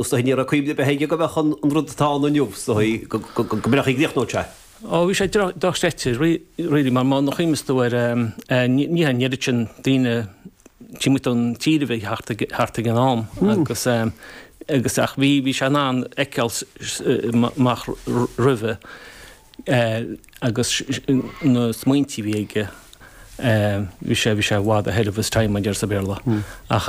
Sea, ní raibh cuimhne ar bith aige go mbeadh an rud atá ann inniu, sea, go mbeadh, go gcríochnódh sé. Ó, bhí sé dochreidte, really, mar nuair a chuimhneos tú air, ní hé an oiread sin daoine taobh amuigh den tír a bhí thart ag an am agus, agus, ach bhí, bhí sé in ann fheiceáil amach roimhe agus na smaointí a bhí aige, bhí sé, bhí sé i bhfad ahead of his time mar a deir sa Bhéarla. Ach.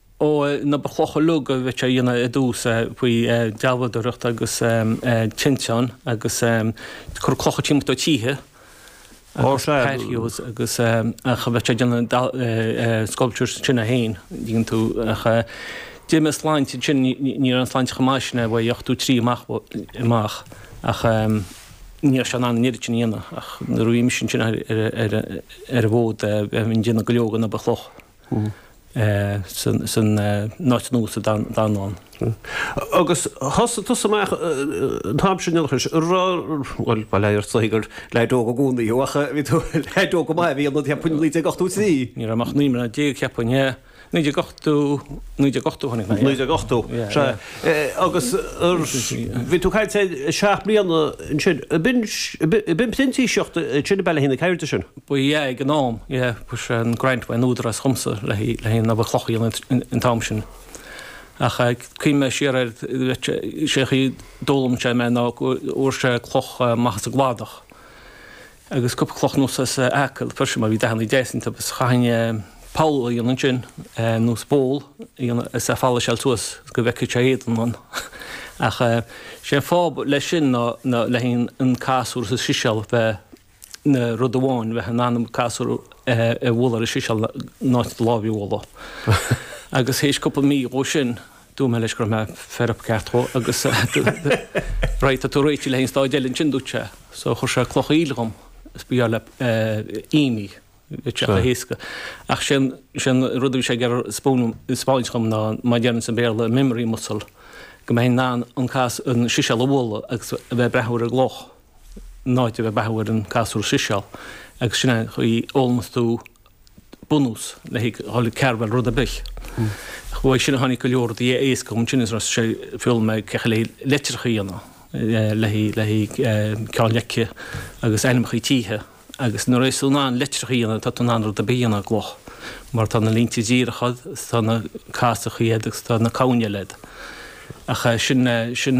Ó an obair chloch uilig a bhí sé a dhéanamh ar dtús, faoi dealbhadóireacht agus tinteáin agus ag cur clocha timpeall do tithe agus patios agus ach a bhí sé ag déanamh sculptures ansin é féin, dhein tú ach d'ith mé sláinte ansin, ní raibh an tsláinte chomh maith sin aige, ó ochtó trí amach ach ní raibh sé in ann an oiread sin a dhéanamh ach nuair a bhí mise ansin ar an bhfód bheinn ag déanamh go leor den obair chloch. san áit nua sa Dánlann. Agus thosaigh tusa amach an t-am sin ina chois, a rá, bhuel, ba léir sa chaoi gur leaid óg i gcónaí thú, ach bhí tú, leaid óg go maith a bhí ionat, cheapfainn, 1983? Ní raibh mé ach naoi mbliana déag, cheapfainn, yeah, 1980, 1980 a tháinig mé, yeah. 1980, sea. Agus bhí tú chaith tú seacht mbliana ansin, b'in, b'in printíseacht ansin i Ballyaheena, céard é sin? Ba ea ag an am, bhí an grant ón Údarás dhomsa le haghaidh an obair chloch a dhéanamh an t-am sin. Ach ag cuimhneamh siar air, sé chaoi d'fhoghlaim sé mé ná go bhfuair sé cloch amach as an gcladach, agus cúpla cloch anuas as Acaill freisin, mar bhí dathannaí deas iontu, agus chaithfinn poll a dhéanamh ansin, nó bowl a dhéanamh as, a pholaiseáilt suas go bhfeicfeadh sé a éadan ann. Ach sé an fáth leis sin ná le haghaidh an casúr is an siséal a bheith. ina rud amháin bheith in ann an casúr a bhualadh ar an siséal in áit do láimhe a bhualadh. Agus th'éis cúpla mí dhó sin, dúirt mé leis go raibh mé fed up ceart go leor agus Right, tá tú réitithe le haghaidh an stáid eile ansin, dúirt sé. So thug sé cloch aoil dhom, is ba gheall le him é, bhí sé chomh héasca. Ach sin an rud a bhí sé ag iarraidh a spáint dhom ná, mar a déarfainn sa Bhéarla, memory muscle, go mbeinn in ann an siséal a bhualadh agus a bheith ag breathnú ar an gcloch. In áit a bheith ag breathnú ar an casúr is an siséal agus sin é an chaoi a fhoghlaimeos tú bunús le haghaidh dhul ag carbháil rud ar bith. Uaidh sin a tháinig go leor rudaí éasca dhom ansin is thosaigh sé ag foghlaim mé cén chaoi le leitreacha a dhéanamh le haghaidh le haghaidh ceann leice agus ainmneacha tithe agus nuair a bhíos tú in ann leitreacha a dhéanamh tá tú in ann rud ar bith a dhéanamh i gcloch mar tá na línte díreacha is tá na casachaí agat agus tá na camhain eile agat ach sin sin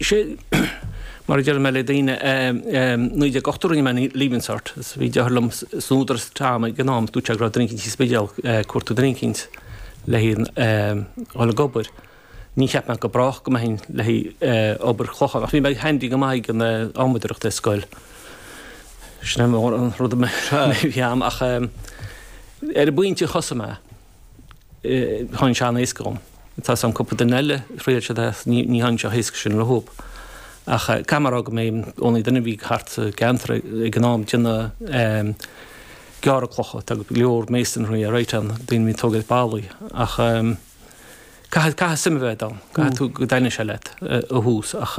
Sin mar a deir mé le daoine 1980, rinne mé Leaving Cert, bhí deartháir dhom san Údarás, Tom, ag an am, dúirt sé go raibh apprentice sa Spidéal, cuartú apprentice le haghaidh dhul ag obair. Ní cheap mé go brách go mbeinn le haghaidh obair chlocha, ach bhí mé handy go maith ag an adhmadóireacht ar scoil. Sin an rud a bhí a'm ach ar an bpointe thosaigh mé. tháinig sé an-éasca dhom. Tá's a'm cúpla duine eile thriail siad é ach ní tháinig sé chomh héasca sin dhóib. Ach ceapaim ar ndóigh go mba mé an only duine a bhí thart sa gceantar ag an am déanamh gearradh clocha, tá go leor masonry alright ann, daoine a bhíonn tógaint ballaí ach caithfidh, caithfidh suim a bheith a'd ann, caithfidh tú go dtaitníonn sé leat ó thús ach.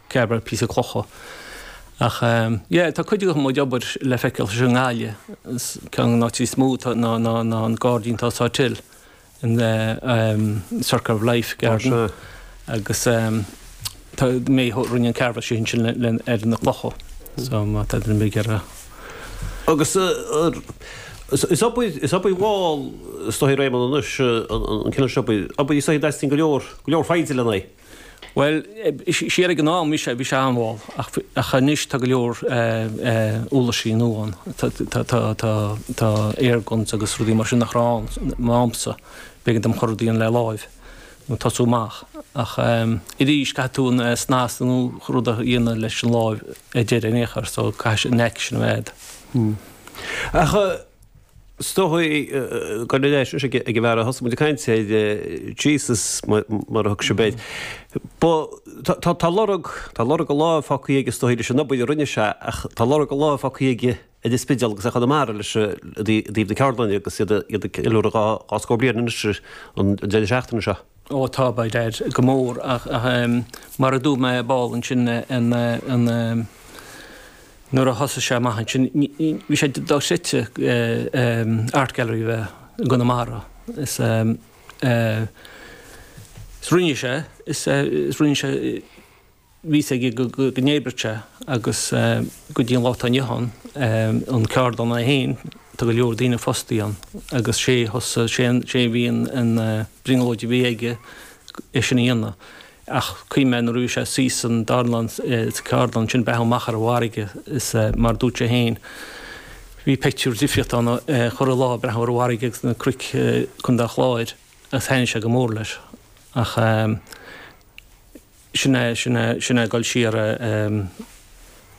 Carváil píosa clocha. Ach yeah tá cuid de mo chuid obair le feiceáil sa nGaillimh. Ceann de na áiteanna is mó tá ná ná ná an gairdín atá i Salthill in the um Circle of Life garden. Ó sea. Agus um tá mé a rinne an carváil sin ansin le le ar na clocha. So má tá duine ag iarraidh. Agus uh is obair is obair mhall is dóigh Réamonn anois an an cineál seo obair obair is dóigh go dteastaíonn go leor go leor foighde len é. Bhuel, siar ag an am, bhí sé, bhí sé an-mhall, ach, ach anois tá go leor eh, uirlisí nua ann, tá, tá, tá, tá, tá airguns agus rudaí mar sin nach raibh ann i m'amsa, b'éigean dom chuile rud a dhéanamh le láimh, ag tosú amach. Ach ehm, arís, caithfidh tú an eh, snas nó rud a dhéanamh leis an láimh ar deireadh ar aon chaoi, so caithfidh sé an knack sin a bheith agat. Ach eh, Is dócha go raibh an neaic sin leis ag an bhfear a thosnaíomair ag caint air, Jesus mar a thugann sibh air. Tá lorg, tá lorg a láimh fágtha aige is dócha leis an obair a rinne sé ach tá lorg a láimh fágtha aige ar an Spidéal agus ar Chonamara leis i dtaobh na ceardlainne agus iad ag ceiliúradh dhá scór bliain anois an deireadh seachtaine seo. Ó, tá, by dad, go mór, ach mar a dúirt mé ball ansin an, nuair a thosaigh sé amach ansin, bhí sé dochreidte Art Gallery a bheith i gConamara, is rinne sé, is rinne sé, bhí 's aige go n-oibreodh sé agus go dtí an lá atá inniu ann an cheardlann é féin tá go leor daoine fostaí ann agus sé thosaigh sé sé bhí an an brionglóid a bhí aige é sin a dhéanamh ach cuimhním nuair a bhí sé suite sa dánlann sa gceardlann sin breathnú amach ar an bhfarraige is mar dúirt sé féin bhí pictiúr difriúil ann chuile lá breathnú ar an bhfarraige agus na cnoic Contae an Chláir agus thaitnigh sé go mór leis ach Sin é, sin é, sin é dul siar a,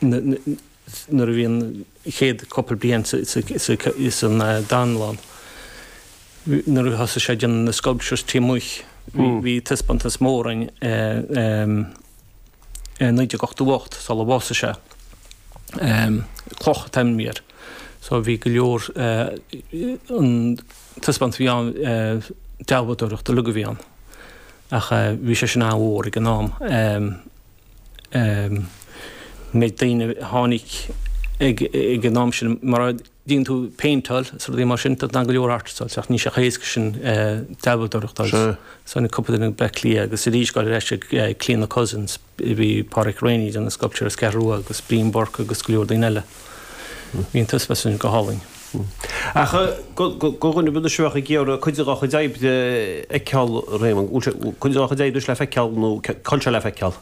nuair a bhí an chéad chúpla bliain sa, sa, sa, insan dánlann, nuair a thosaigh sé ag déanamh na sculptures taobh amuigh, bhí, bhí taispeántas mór in, in 1988 sular bhásaigh sé, Cloch an t-ainm a bhí air. So bhí go leor, an taispeántas a bhí ann, dealbhadóireacht uilig a bhí ann. Ach bhí sé sin an-mhór ag an am. Méid daoine a tháinig ag an am sin, mar a dtéann tú ag péinteáil is rudaí mar sin, tá go leor artists, ach níl sé chomh héasca sin dealbhadóireacht a fháil. Tháinig cúpla duine as Bleá Cliath agus arís, gabháil ar ais ag Clíodhna Cussen. Bhí Pádraic Reaney ag déanamh sculptures as an gCeathrú Rua, agus Brian Bourke agus go leor daoine eile. Bhí an taispeántas sin go hálainn. Ach do dhuine b'fhéidir sibh a bheadh ag iarraidh cuid de do chuid oibre a fheiceáil, Réamonn. Bhfuil sé, cuid de do chuid oibre le feiceáil nó cad seo le feiceáil?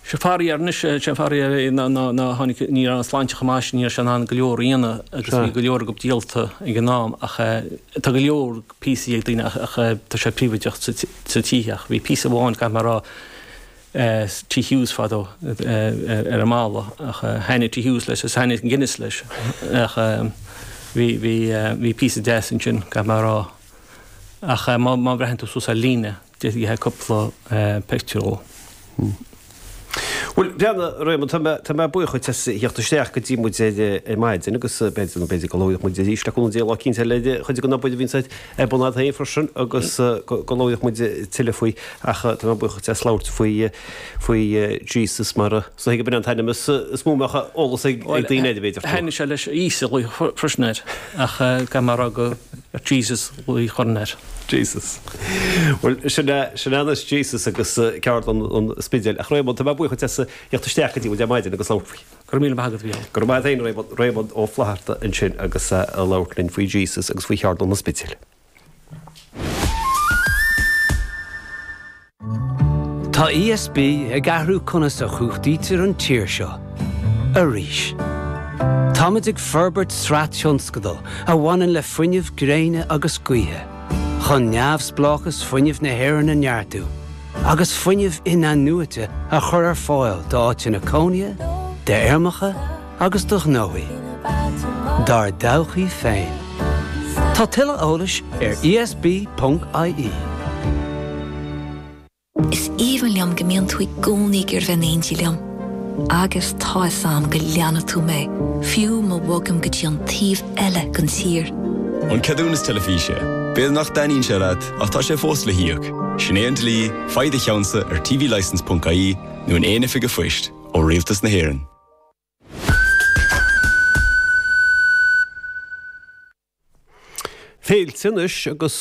Sé faraor anois, sé an faraor é ná tháinig, ní raibh an tsláinte chomh maith sin, ní raibh sé in ann go leor a dhéanamh agus bhí go leor acu díolta ag an am. Ach tá go leor píosaí ag daoine ach tá sé príobhaideach sa teach. Bhí píosa amháin, caithfidh mé a rá, Tigh Hughes fadó ar an mballa ach thaitnigh Tigh Hughes leis agus thaitnigh an Guinness leis ach bhí píosa deas ansin, caithfidh mé a rá. Ach má bhreathnaíonn tú suas ar líne, d'fheicfeá cúpla pictiúr dhó. Bhuel, breathnaigh, Réamonn, tá mé buíoch dhuit as theacht isteach go dtí muid ar maidin agus b'fhéidir go labhróidh muid arís le cúnamh Dé lá eicínt le cuid den obair a bhíonns. Ar bun a'd féin freisin agus go labhródh muid tuilleadh faoi ach tá mé buíoch as labhairt faoi Jesus mar is dóigh gurb in an t-ainm is mó a mbeadh eolas ag daoine air, b'fhéidir. Thaitnigh sé leis Íosa a ghlaoch freisin air ach caithfidh mé a rá gur Jesus a ghlaoch orainn air. Jesus. Bhuel, sin é, sin é anois Jesus agus Ceardlann an Spidéil. Ach Réamonn, tá mé buíoch as theacht isteach go dtí muid ar maidin agus labhairt faoi. Go raibh míle maith agat, Mhícheál. Go raibh maith a'd fhéin, Réamonn Ó Flatharta ansin agus a' labhairt linn faoi Jesus agus faoi Cheardlann an Spidéil. Tá ESB ag athrú conas a chumhachtaítear an tír seo. Arís. Táimid ag forbairt sraith tionscadal a bhaineann le fuinneamh gréine agus gaoithe, chun neamhspleáchas fuinnimh na hÉireann a neartú, agus fuinneamh inathnuaite a chur ar fáil d'áiteanna cónaithe, d'fheirmeacha agus do ghnóthaí, dár dtodhchaí féin. Tá tuilleadh eolais ar ESB.ie. Is aoibhinn liom go mbíonn tú i gcónaí ag iarraidh bheith in éindí liom. Agus tá fhios a'm go leanfaidh tú mé, fiú má bhogaim go dtí an taobh eile den tír. An ceadúnas teilifíse. B'fhéidir nach dtaitníonn sé leat. Ach tá sé fós le híoc. Sin é an dlí, faigh do cheannsa ar tvlicense ponc ie nó in aon oifig a' phoist, ó Rialtas na hÉireann. Féilte anois agus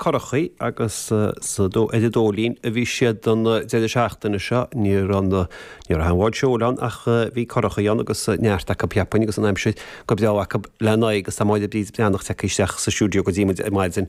currachaí agus sa dó ar an Dóilín a bhí siad don deireadh seachtaine seo. Níor fhan, ní raibh aon bhád seoil ann ach bhí currachaí ann agus neart acu cheapfainn agus an aimsir go breá acu lena aghaidh agus tá Máire Bríd Breathnach tagtha isteach sa stiúideo go dtí muid ar maidin.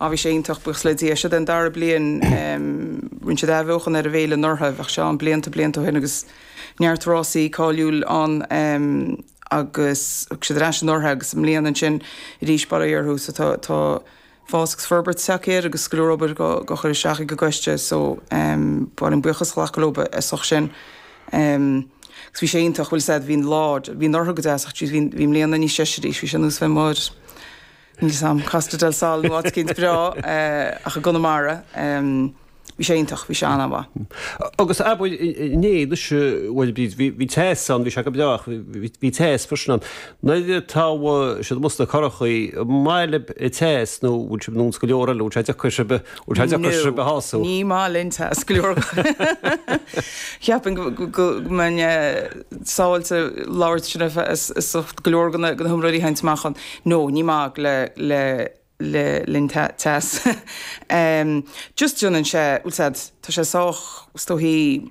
Á bhí sé iontach, buíochas le Dia, seo é an dara bliain, rinne siad athbheochan ar an bhféile anuraidh, bhíodh sé ann blianta blianta ó shin agus neart rásaí cáiliúil ann agus thug siad ar ais anuraidh agus i mbliana ansin arís bar éirí orthu so tá fás agus forbairt tagtha air agus go leor obair á chur isteach ag an gcoiste so ba mhaith linn buíochas a ghlacadh leo as ucht sin agus bhí sé iontach, bhfuil 'fhios a'd, bhí an lá, bhí anuraidh go deas ach jeez bhí an bhí i mbliana níos deise arís, bhí sé ar nós bheith mór. níl fhios a'm, Costa del Sol nó áit éicint breá ach i gConamara, bhí sé iontach, bhí sé an-mhaith. Agus a' bhfuil, inné, anois, bhuel bhí, bhí teas ann, bhí sé go breá ach bhí teas freisin ann. Nuair atá sibh amuigh sna currachaí, an maith libh teas nó bhfuil sibh nós go leor eile, bhfuil sé deacair sibh, bhfuil sé deacair sibh a shású? No, ní maith linn teas go leor. Cheapfainn go mbeinn sábháilte labhairt sin ar feadh go leor de na hiomróirí a tháinig amach ann. No, ní maith le, le, le linn teas. Em, just déanann sé, bhfuil 'fhios a'd, tá sé sách, is dóichí,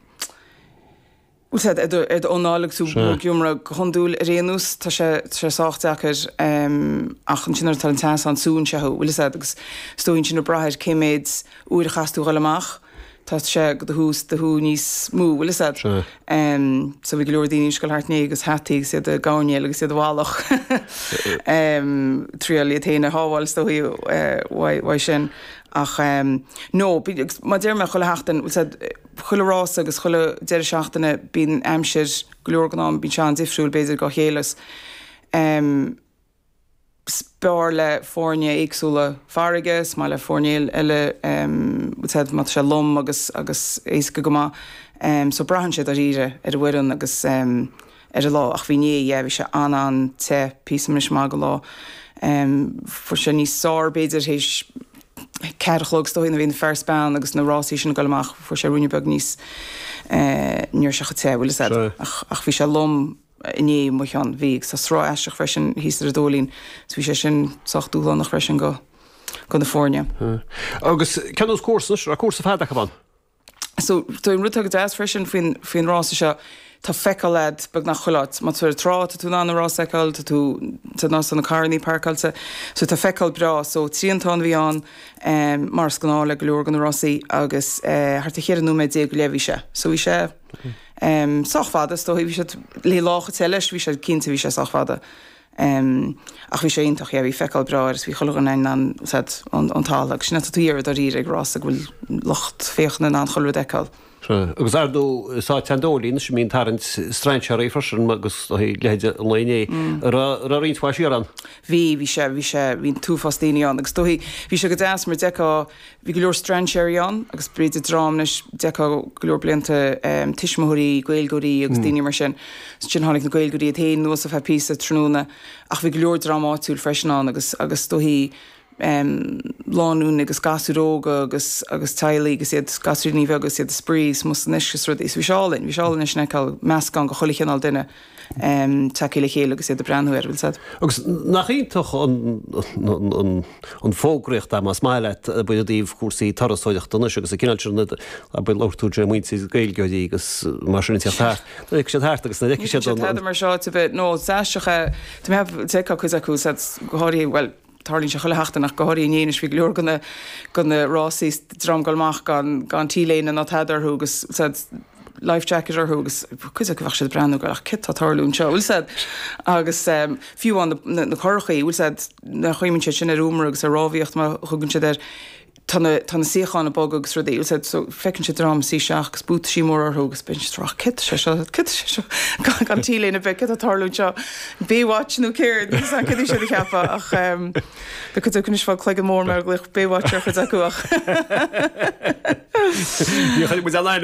bhfuil 'fhios a'd, ar do, ar do anáil agus tú Sea. ag iomramh go hiondúil ar aon nós, tá sé, tá sé sách deacair, em, ach ansin nuair atá an teas ann, súnn sé thú, bhfuil 'fhios a'd, agus is dóichí ansin ag brath ar cé mhéad uair a chaithfeas tú dhul amach. Tá sé do do shú níos mó, bhfuil 'fhios a'd. So bhí go leor daoine ag goil thart inné agus hataí agus iad a' gabhairnéal agus iad ar bhealach ag triail iad féin a shábháil is dóichí uaidh sin. Ach no, agus mar a deir mé chuile sheachtain, bhfuil 'fhios a'd, chuile rása agus chuile deireadh seachtaine bíonn aimsir go leor den am, bíonn sé an-difriúil b'fhéidir dhá chéile. is fearr le foirne éagsúla farraige, is maith le foirne eile bhfuil 'fhios a'd má tá sé lom agus agus éasca go maith so braitheann sé dáiríre ar an bhfoireann agus ar an lá ach bhí inné yeah bhí sé an-an-te píosa anois maith den lá fuair sé níos fearr b'fhéidir théis ceathair a chlog is dóigh nuair a bhí an fear 's bean agus na rásaí sin ag goil amach fuair sé ruainne beag níos eh, ní raibh sé chomh te bhfuil 'fhios a'd ach ach bhí sé lom i ndiaidh mo cheann. Bhí agus tá sruth aisteach freisin thíos ar an Dóilín, so bhí sé sin sách dúshlánach freisin go go na foirne. Agus cén sórt cúrsa anois, raibh cúrsa fada acu ann. So tá an rud atá go deas freisin faoin faoin rása seo, tá feiceáil agat beagnach chuile áit. Má tá tú ar an trá, tá tú in ann an rás a fheiceáil, tá tú sa nó sna carrannaí páirceáilte, so tá feiceáil breá. So triantán a bhí ann, mar is gnáth le go leor de na rásaí, agus thart ar cheithre nóiméad déag go leith a bhí sé, so bhí sé. sách fada, is dóichí, bhí siad le lá chomh te leis, bhí sé cinnte, bhí sé sách fada. Ach bhí sé iontach, bhí feiceáil breá air is bhí chuile dhuine in ann, tá 'fhios a'd, an t-alt agus sin atá tú ag iarraidh dáiríre ag rása go bhfuil lucht féachana in ann chuile rud a fheiceáil. Agus ar ndóigh is áit é an Dóilín anois a mbíonn tarraingt strainséaraí freisin agus do leithéid an lae inné. Raibh roinnt mhaith siar ann? Bhí, bhí sé, bhí sé, bhí an t-uafás daoine ann agus is dóichí, bhí sé go deas mar d'fheicfeá Bhí go leor strainséirí ann agus b'fhéidir dream leis d'fheicfeá go leor blianta, tuismitheoirí, Gaeilgeoirí agus daoine mar sin. Ansin tháinig na Gaeilgeoirí iad féin anuas ar feadh píosa tráthnóna ach bhí go leor dream áitiúil freisin ann agus agus is dóichí lánúin agus gasúir óga agus agus teaghlaigh agus iad, gasúiríní bheaga agus iad ag spraoi is mó san uisce is rudaí. So bhí sé álainn, bhí sé álainn é sin a fheiceáil, meascán de chuile chineál duine. tagtha le chéile agus iad ag breathnú air, bhfuil 'fhios a'd. Agus nach iontach an fógraíocht é, más maith leat, i dtaobh cúrsaí turasóireachta anois agus an cineál sin luaigh tú i dtaobh muintir na Gaeilgeoirí agus mar sin de. D'fhéach siad thart agus d'fheicfeadh siad an. Tá siad thart mar seo, nó is aisteach é, tá mé ag, d'fheicfeadh cuid acu, go háirithe, bhuel, Tarlaíonn sé chuile sheachtain ach go háirithe inné anois bhí go leor de na rásaí is an dream ag goil amach gan T-léine ná tada orthu agus tá 'fhios a'd life jacket orthu agus cuid acu bheadh siad ag breathnú ag goil ach céard atá ag tarlú anseo bhfuil 'fhios a'd agus fiú amháin na curachaí bhfuil 'fhios a'd nuair a chuimhníonn siad sin ar iomramh agus ar rámhaíocht mar a thugann siad air Tá na, tá na suíocháin ag bogadh agus rudaí, tá 'fhios a'd, so feiceann siad dream ag suí isteach agus buataisí móra orthu agus bíonn siad ag rá, céard é seo, céard é seo, gan, gan T-léine ar bith, céard atá ag tarlú anseo, Baywatch nó céard, níl 'fhios a'm céard a bheadh siad a cheapadh ach ehm, bheadh cuid acu anois ag fáil cloigeann mór mar a ghlaoch Baywatch ar chuid acu ach. Ní chuirfidh muid aon ainm.